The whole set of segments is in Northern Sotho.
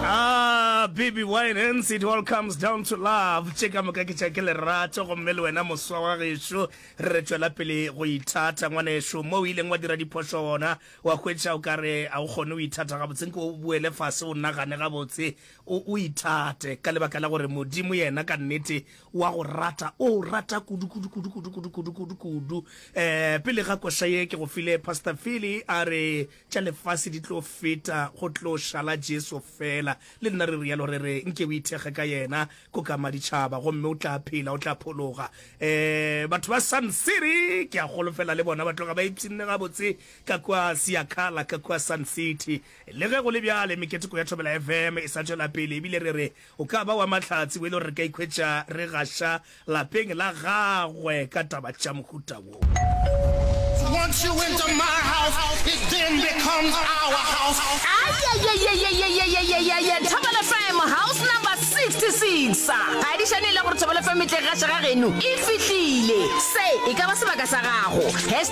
Ah, baby wine hence it all comes down to love tše ka moka ke tša ke lerato gomme le wena moswa wa gešo re re tšwela pele go ithata ngwaneso mo o ileng wa dira diphošo ona wa hwetša o ka re a o kgone o ithata gabotse nke o boele fase o nagane gabotse o o ithate ka lebaka la gore modimo yena ka nnete wa go rata o rata kudu kudu kudu kudu kudu kudu kudu kudu um pele ga koša ye ke go file pastor fili a re tša lefase di tlo feta, go tlo šala Jesu fela. Le nna re rialo, re re, Nke o ithekge ka Yena, ko ka Maditšhaba, gomme o tla phela, o tla phologa. E, batho ba Sun City, ke a golofela le bona ba tloga ba ipshinne gabotse ka kua Siakala, ka kua Sun City. Le ge go le bjale, meketeko ya Thobela FM e sa tšwela pele, ebile re re, O ka ba wa mahlatse wele gore re ka ikhwetša re gaša lapeng la gagwe ka taba tša mohuta wo. Once you enter my house, it then becomes our house. Ayayayayayayayayaya Thobela FM house number 66 ga di šane e le gore Thobela FM e tle gaša ga geno e fihlile se e ka ba sebaka sa gago.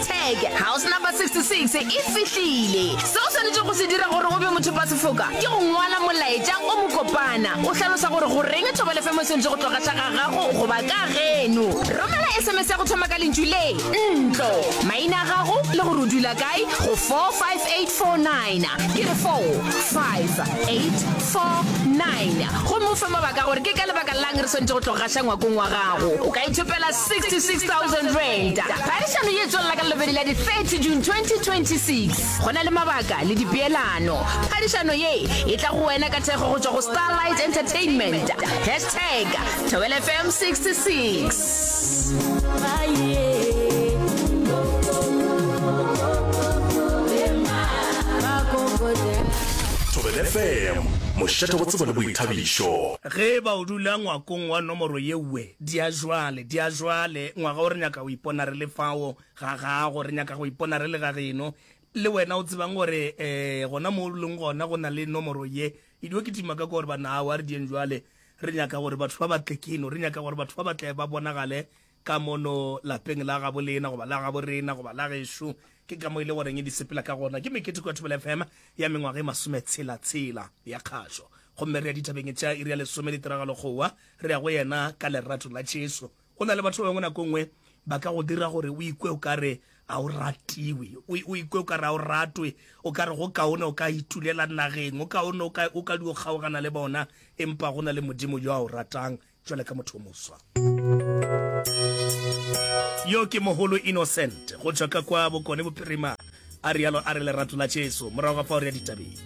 Tag, House Number 66 e fihlile. Seo o swanetšego go se dira gore o be mothopasefoka ke go ngwala molaetša o mokopana o hlalosa gore goreng thobalefemo e swanetše go tloga tša ga gago goba ka geno. Romela sms ya go thoma ka lentšu le, ntlo, maina a gago le gore o dula kae go 45849. Ke re 45849 gomme o fe mabaka a gore ke ka lebaka la'ng re swanetše go tloga gaša ngwakong wa gago. O ka ithopela R66,000. Phadišano ye e tswelela ka Labobedi la di 30 June 2026. Go na le mabaka le dipeelano. Phadišano ye e tla go wena ka thekgo go tšwa go Starlight Entertainment. Hashtag Thobela FM 66. thobele fm mošate go tsebo le boithabišo ge ba o dula ngwakong wa nomoro yewe Diajwale, diajwale, ngwaga o re nyaka go ipona re le fao ga gago, re nyaka go ipona re le ga geno. Le wena o tsebang gore, e, gona moo o leng gona, go na le nomoro ye. Ke dio kitima ka kwa gore, Banna, aowa, re dieng jwale. Re nyaka gore batho ba ba tle keno. Re nyaka gore batho ba ba tle ba bonagale ka mono lapeng la gabo lena, goba la gabo rena, goba la gešo. Ke ka mo e le goreng di sepela ka gona. Ke meketeko ya Thobela FM ya mengwaga e masometshela-tshela ya kgašo. Gomme re ya dithabeng e tšea iri ya lesome le tiragalo go wa. Re ya go yena ka lerato la Jesu. Go na le batho ba bangwe nako nngwe ba ka go dira gore o ikwe o ka re a o ratiwe, o ikwe o ka re a o ratwe, o ka re go kaone o ka itulela nageng, o kaone o ka, o ka di o kgaogana le bona, empa go na le Modimo yo a o ratang jwale ka motho o moswa. Yo ke mogolo Innocent go tšwa ka kwa Bokone Bophirima, a rialo a re lerato la Jesu. Morago ga fao re ya ditabeng.